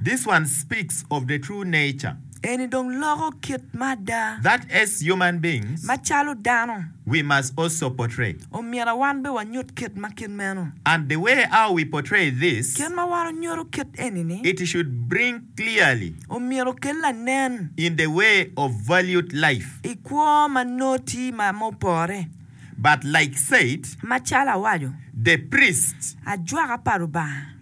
This one speaks of the true nature. Eni dong loko kit ma ada. That as human beings. Macalo dano. We must also portray. Omyero wan bene wanyut kit ma kit meno. And the way how we portray this. Kit ma wan onyuto kit eni ni. It should bring clearly. Omyero okel lanen. In the way of valued life. I kwo ma nongo tye ma opore. But like said. Macalo awaco. The priest. Ajwaka pa Lubanga.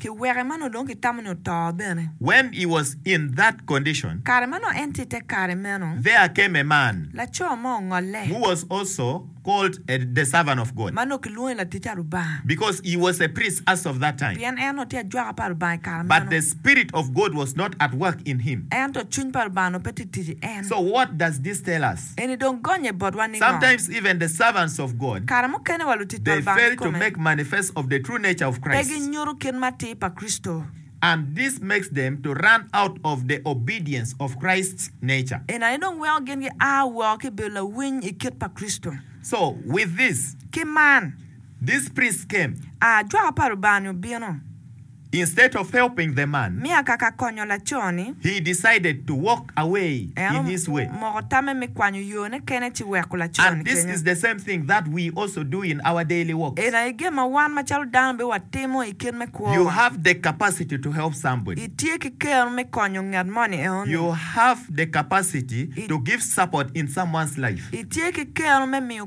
Ki weke ma nongo dong kitamo ni oto bene. When he was in that condition. Kare ma nongo en tye i te kare meno. There came a man. Laco mo ongolle. Who was also called a, the servant of God. Ma nongo kilwongo ni latic pa Lubanga. Because he was a priest as of that time. Pien en nongo tye ajwaka pa Lubanga i kare meno. But the Spirit of God was not at work in him. Ento cwiny pa Lubanga nongo pe tye tic i en. So what does this tell us? Eni dong gonnye botwa ni ngo? Kare mukene wa lutit pa Lubanga kikome pe ginyuto kit ma atir pa Kricito. Eni aye dong weko gin gia woko ki i bedo lawiny i kit pa Kricito. Ki man, ajwaka pa Lubanga-ni obino. Instead of helping the man, Miya kaka konyo laco-ni. he decided to walk away En in his way. omoko tamme me kwanyo yone kene ci weko laco-ni And this kenyo. is the same thing that we also do in our daily walks. Eni aye gin ma wan macalo dano bene watimo i kit me You kwowa. have the capacity to help somebody. Itye ki keno me konyo ngat mo ni eno-ni. You have the capacity to give support in someone's life. Itye ki keno me miyo